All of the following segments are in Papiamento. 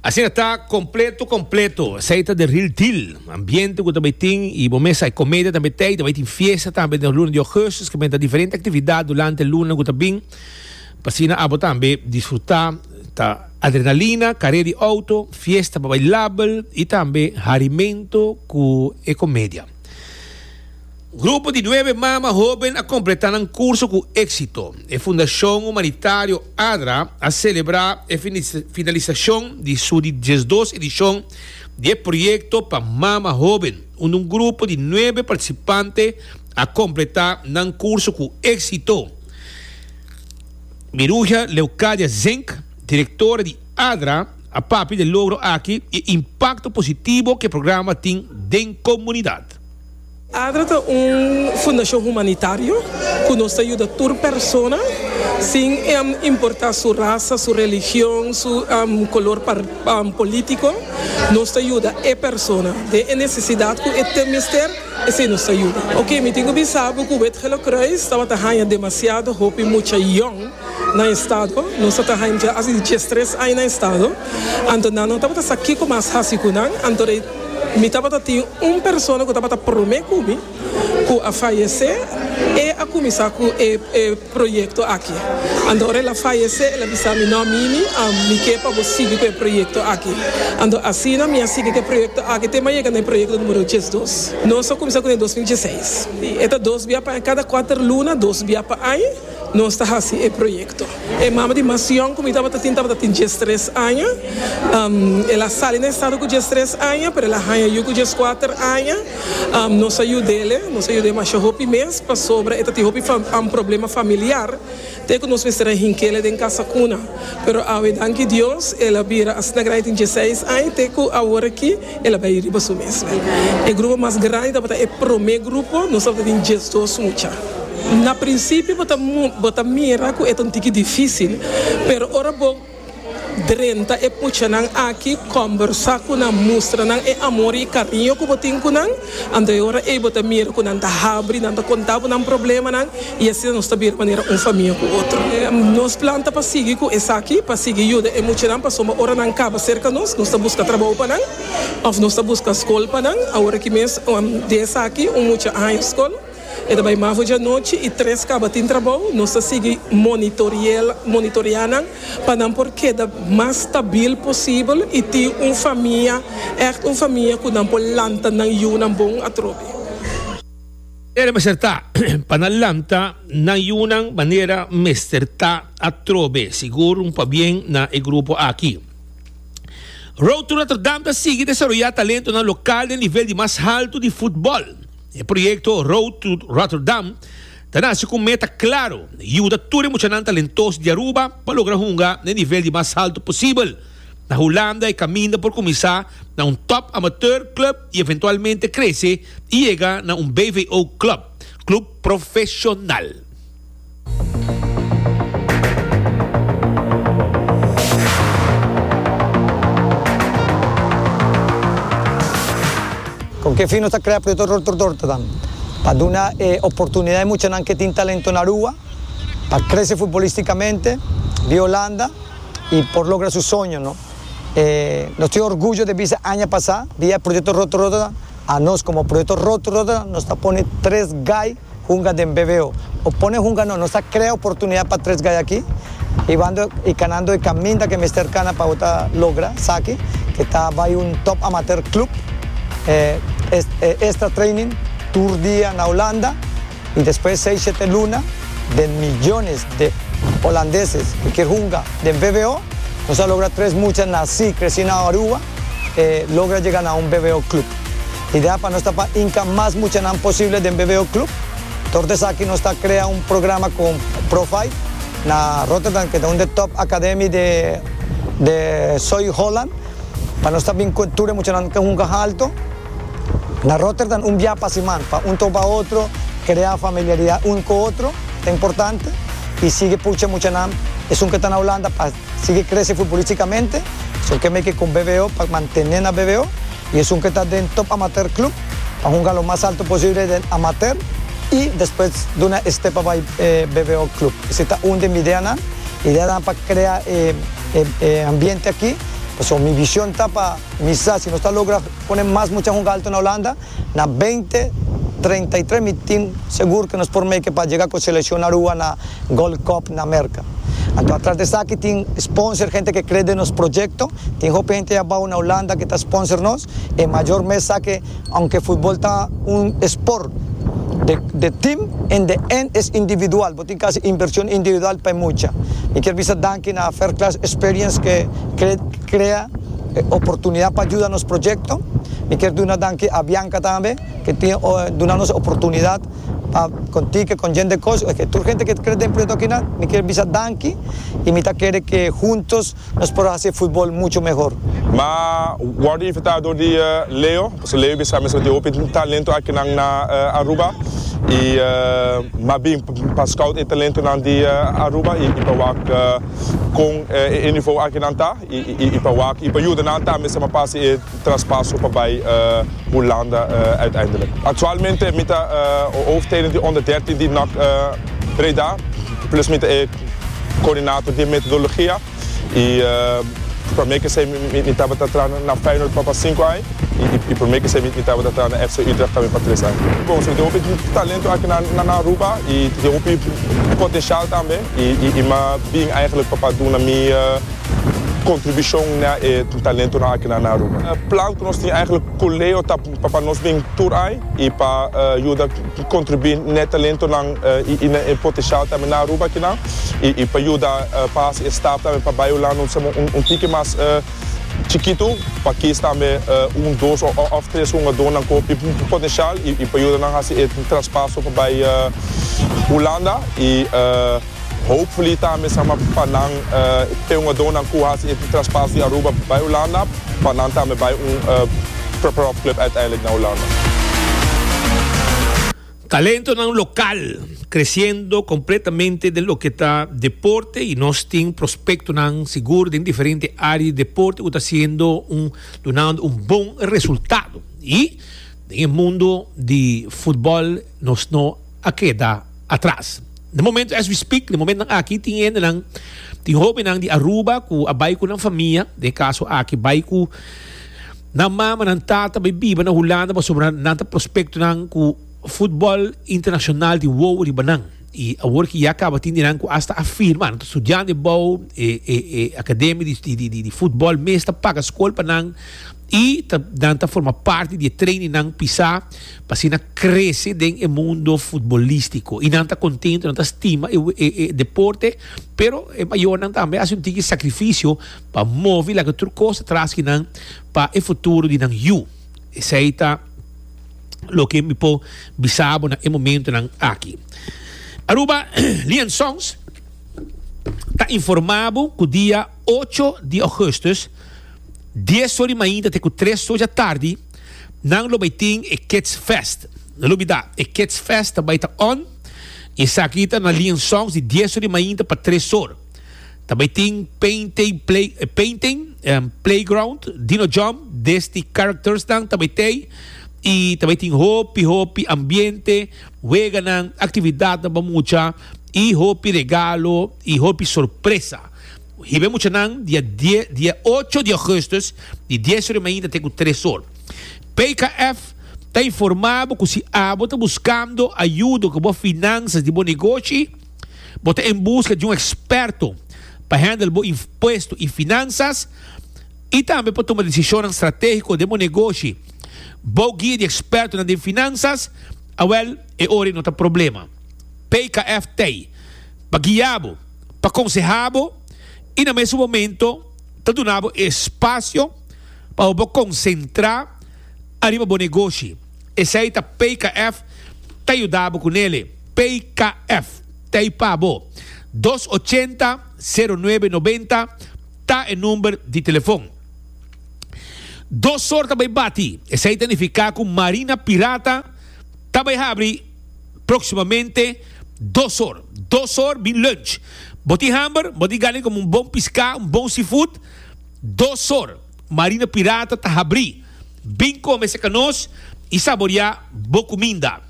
Asina ta completo completo. Esey ta de real deal. Ambiente cu ta bay tin y bo mes hay comedia tambe tey. Ta bay tin fiesta tambe den luna di augustus cu menta diferente actividad durante luna cu ta bin. Pasina abo tambe disfruta. Ta adrenalina, carrera di auto, fiesta pa bailabel y tambe harimento cu e comedia. Grupo di nuebe mama hóben a kompletá nan kurso ku éksito. E Fundashon Humanitario adra a selebrá e finalisashon di su di diesdos edishon di e proyekto pa mama hóben, unda un grupo di nuebe partisipante a kompletá nan kurso ku éksito. Miruja Leucadia Zenck, direktora di adra, a papia di e logro aki i e impakto positibo ku e programa tin den komunidat. Adra ta un fundashon humanitario ku nos ta yuda tur persona sin importa su rasa, su religion, su kolor polítiko. Nos ta yuda e persona den e nesesidat ku e ta mester, esei nos ta yuda. Oke, mi tin ku bisa bo ku Wit Gele Kruis tabata haña demasiado hopi mucha yòn na estado. Nos tabata haña dje a tres aña na estado, anto nan no tabata sa kiko mas hasi ku nan, anto rei. Mi tabata tin un persona ku tabata promé ku mi ku a fayesé, e a kuminsá ku e e proyekto aki. Anto ora el a fayesé el a bisa mi, No Mimi, mi ke pa bo sigui ku e proyekto aki. Anto asina mi a sigui ku e proyekto aki te mi a yega na e proyekto numero diesdos. Nos a kuminsá ku den dos mil dieseis. E ta dos bia pa aña, kada kuater luna dos bia pa aña. Nos ta hasi e proyekto. E mama di Masion ku mi tabata tin tabata tin diestres aña. El a sali na e stado ku diestres aña, pero el a haña yu ku dieskuater aña. Nos a yud'el, nos a yud'e masha hopi mes pasobra e ta tin hopi problema familiar te ku nos mester a hinkele den kasa kuna. Pero awe, danki Dios, el a bira asina grandi tin diesseis aña te ku aworakí. El a bay riba su mes. E grupo mas grandi tabata e prome grupo, nos tabata tin diesdos mucha. Na principio bo ta bo ta mira cu e ta un tiki dificil, pero ora bo drenta e muchanan aki, combersa cu nan, mustra nan e amor y e cariño cu bo tin cu nan, Anto e ora ei bo ta mira ku nan ta habri, nan ta konta bo nan problemanan i asina nos ta bira manera un famia ku otro. Nos plan ta pa sigui ku esaki, pa sigui yuda e muchanan pasobra ora nan kaba serka nos, nos ta buska trabou pa nan òf nos ta buska skol pa nan. Awor aki mes di esaki un mucha haña skol. E ta bai mafo djanochi y tres caba tin trabao. Nos ta sigui monitorea nan pa nan por keda mas stabil posibel y tin un famia, echt un famia cu nan por lanta nan yunan bon atrobe. E ta acerta pa nan lanta nan yunan manera mester ta atrobe, sigur un pabien na e grupo aki. Road to Rotterdam ta sigui desaroya talentonan local den nivel di mas halto di futbol. E proyekto Road to Rotterdam ta nase ku un meta klaro, yuda tur e muchanan talentoso di Aruba pa logra hunga na e nivel di mas haltu posibel. Na Hulanda e kaminda por kuminsá na un Top Amateur Club i eventualmente krese i yega na un BVO Club, Club Profeshonal. Kon ke fin nos ta krea Proyekto Rotor Dorta dan? Pa duna e oportunidat e muchanan ke tin talento na rua pa krese futbolístikamente bia Holanda i por logra su soño no. Nos tin orguyo di bisa aña pasá bia e Proyekto Rotor Rotterdam, a nos komo Proyekto Rotor Rotterdam nos ta pone tres gai Hunga den BVO. O pone hunga no, nos ta krea oportunidad pa tres gayaki y wando y kanando e kaminda ke mester kana pa bo ta logra saki, ke ta bai un top amateur club, e extra training, tur dia na Holanda y despues seis shete luna den millones de Holandeses ke kier hunga den BVO. Nos a logra tres mucha naci, creci na Aruba. e logra jega na un BBO Club. Idea pa nos ta pa hinka mas muchanan posible den BBO Club. Dor di esaki nos ta krea un programa con Profite na Rotterdam ke ta un di top academy di di Zuid Holland pa nos ta bin cu e tur e muchanan ke hunka halto na Rotterdam un biaha pa siman pa un ta oba otro krea familiaridad un cu otro ta importante y sigue pucha muchanan esun ke ta na Holanda pa Sigui krese futbolístikamente, so ke meke kon BVO pa mantené na BVO i esun ke ta den Top Amateur Club ta hunga lo mas alto posible den Amateur i despues duna e step pa bai BVO Club. Esei ta un den mi ideanan. Ideanan pa krea e ambiente aki. Pasobra mi vishon ta pa mi sa si nos ta logra pone mas mucha hunga alto na Holanda. Na beinti treinta i tres mi tin segur ku nos por make pa jega ku selekshon na rua na Gold Cup na Merka. Anto atras di esaki tin sponsor henter ke kre den nos proyekto. Tin hopi henter abou na Hulanda ke ta sponsor nos. E mayor mes sa ke aunke futbol ta un esport de de tim en de end es individual. Bo tin ku hasi invershon individual pa e mucha. Mi kier bisa danki na Fairclass Experience ke kre. Crea e oportunidad pa juda nos proyecto. Mi kier duna danki a Bianca tambe ke tin duna nos e oportunidad pa contique con yende cos. Oke tur hente ke ta cre den proyecto akinan mi kier bisa danki y mi ta kere ke huntos nos por haci e futbol mucho mehor. Ma wordo invita door di Leo, pasobra Leo bisa mesora tin hopi talento akinan na Aruba y ma bin pa scout e talentonan di Aruba y pa wak. kon e nivou aki nan ta i pa wak i pa yuda nan tambe sa pa pasa e traspaso pa bai Hulanda uiteindelijk. Actualmente mi ta hoofdtrainer di onder dertin di nac Breda plus mi ta e coördinator di e metodologia i prome kesei mi tabata traha na Feyenoord pa pa sinku ai i prome kesei mi tabata traha na FC Utrecht tambe pa tres ai. Bon, so tin hopi talento aki na Aruba i tin hopi potencial tambe. I m'a bin eigenlijk pa pa duna mi contribucion na e tur talentonan aki na Aruba. E plan cu nos tin eigenlijk Coleo ta pa pa nos bin tur ai i pa yuda contribui n'e talentonan i na e potencial tambe na Aruba akinan i pa yuda pa haci e stap tambe pa bay Hulanda un tiki mas. Chikitu, pa kies tambe un, dos òf tres hungadónan ku hopi potenshal i pa yuda nan hasi e traspaso pa bai Hulanda. I hopefully tambe sama pa nan e hungadónan ku hasi e traspaso di Aruba bai Hulanda, pa nan tambe bai un profklub uiteindelik na Hulanda. Talentonan local creciendo completamente den loke ta deporte y nos tin prospectonan sigur den diferente area di deporte cu ta siendo un dunando un bon resultado y den e mundo di futbol nos no a keda atras. Na momento as we speak, den momentonan aki tin hendenan, tin hobennan di Aruba cu a bay cu nan famia, den e caso aki bay cu Nan mama, nan tata bay biba na Hulanda pasobra nan ta prospectonan cu futbol internacional tin wowo riba nan. Y awor ki ya caba tin di nan cu hasta a firma, nan ta studiando e bou, e, e, e academia di, di, di, di, di futbol mes ta paga scol pa nan y ta, nan ta forma parti di e training nan pisa pa asina crece den e mundo futbolistico. Y nan ta contento, nan ta stima e, e, e deporte, pero e mayornan tambe haci un tiki sacrificio, pa movi laga tur kos atras ki nan pa e futuro di nan yu. Esei ta loke mi por bisa bo na e momentonan aki. Aruba Liansons ta informa bo ku dia ocho di Augustus, dies or di mainta te ku tres or dja tardi, nan lo bai tin e Kids Fest. No lubida, e Kids Fest ta bai ta on i esaki ta na Liansons di dies or di mainta pa tres or. Ta bai tin painting play, eh, painting, um, playground, dino jump, des di characters nan ta bai tei. I ta bai tin hopi hopi ambiente, weganan, actividadnan pa mucha i hopi regalo i hopi sorpresa. Hibe muchanan di a die, di a ocho di augustus di dies ora i mainta te ku tres or. PKF ta informa bo ku si abo ta buskando ayudo ku bo finansas di bo negoshi, Bo ta en buska di un eksperto pa hendel bo impuesto i finansas i tambe pa tuma desishonnan stratégiko den bo negoshi? Bou guia di ekspertonan den finansas? Awèl, e ora ei no ta problema. PKF ta ei pa guia bo, pa konsehá bo i na mesun momento ta duna bo e spasio pa bo por konsentrá ariba bo negoshi. Esei ta PKF ta yuda bo ku nele. PKF ta ei pa bo. Dos ochenta, sero nuebe nobenta ta e number di telefon. Dos sor ta bai bati. Esei ta nifiká ku Marina Pirata ta bai habri próksimamente dos sor. Dos sor bin lunch. Bo tin hamber? Bo tin gana komo un bon piská, un bon seafood? Dos sor. Marina Pirata ta habrí. Bin kome seca nos y saborea bo cuminda.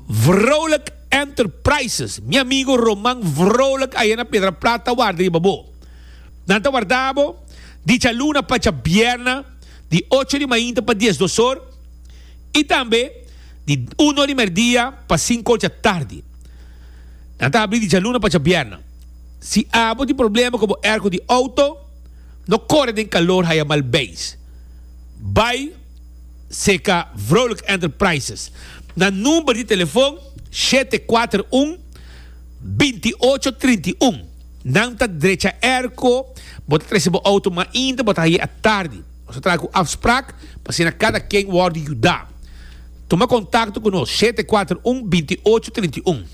Vrolijk Enterprises, mi amigo Roman Vrolijk aya na Piedra Plat ta warda riba bo. Nan ta warda bo dichaluna pacha bierna di ocho di mainta pa diesdos or y tambe di uno di merdia pa cinco or djatardi. Nan ta habrí dichaluna pacha bierna. Si abo tin problema cu bo airco di auto. No kore den kalor haya mal beis. Bai seka Vrolijk Enterprises na number di telefon shete kuater un, binti ocho trinti un. Nan ta drecha airco bo ta trese bo auto mainta bo ta haye a tardi. Nos ta traha ku afsprak pa asina kada ken wòrdu yuda. Tuma kontakto ku nos shete kuater un, binti ocho trinti un.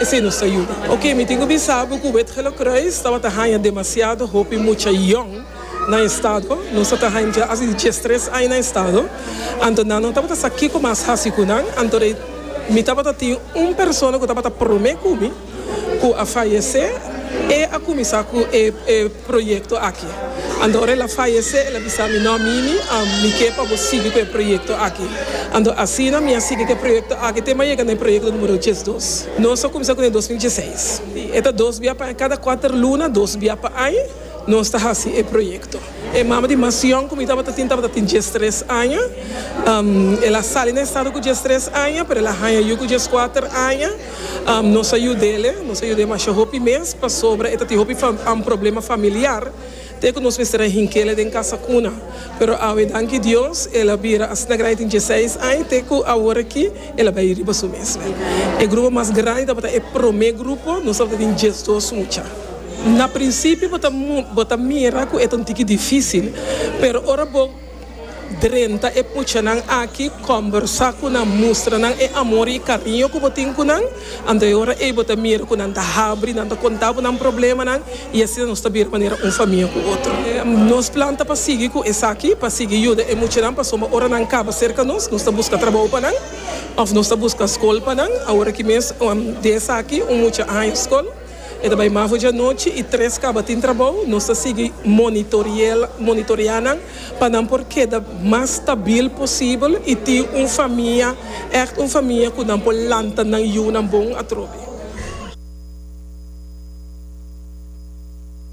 Esei nos ta yuda. Oke, mi tin ku bisa bo ku Wit-Gelukruis tabata haña demasiado hopi mucha yòn na e stado. Nos tabata haña dja hasi dies tres aña na e stado. Anto nan no tabata sa kiko mas hasi ku nan. Anto rei mi tabata tin un persona ku tabata promé ku mi ku a fayesé. E a kuminsá ku e. proyekto aki. Ando ora el a fayesé, el a bisa mi, No, Mimi, mi ke pa bo sigui ku e proyekto aki. Ando asina mi a sigui ku e proyekto aki te mi a yega na e proyekto numero diesdos. Nos a kuminsá ku den dos mil dieseis. Si, e ta dos bia pa aña, kada kuater luna, dos bia pa aña, nos ta hasi e proyekto. E mama di Masion ku mi tabata tin tabata tin diestres aña. El a sali na estado ku diestres aña, pero el a haña yu ku dieskuater aña. Nos a yud'é, nos a yud'é masha hopi mes pasobra e ta tin hopi problema familiar te ku nos mester a hink'é den kasa kuna. Pero awe danki Dios el a bira asina grandi tin dieseis aña te ku awor aki el a bai riba su mes. E grupo mas grandi tabata e promé grupo, nos tabata tin diesdos mucha. Na prinsipio bo ta mira ku e ta un tiki difísil, pero ora bo. Drenta e puchanan aki, kòmbersá ku nan, mustra nan e amor i e kariño ku bo tin ku nan. Anto e ora ei bo ta mira ku nan ta habri, nan ta kontá bo nan problemanan i asina nos ta bira manera un famia ku otro. Nos plan ta pa sigui ku esaki, pa sigui yuda e muchanan pasobra ora nan kaba serka nos, nos ta buska trabou pa nan òf nos ta buska skol pa nan. Aworakí mes di esaki un mucha haña skol. E ta bai Mavo dianochi y tres caba tin trabou. Nos ta sigui monitorea nan pa nan por keda mas stabil posibel y tin un famia, echt un famia cu nan por lanta nan yiunan bon atrobe.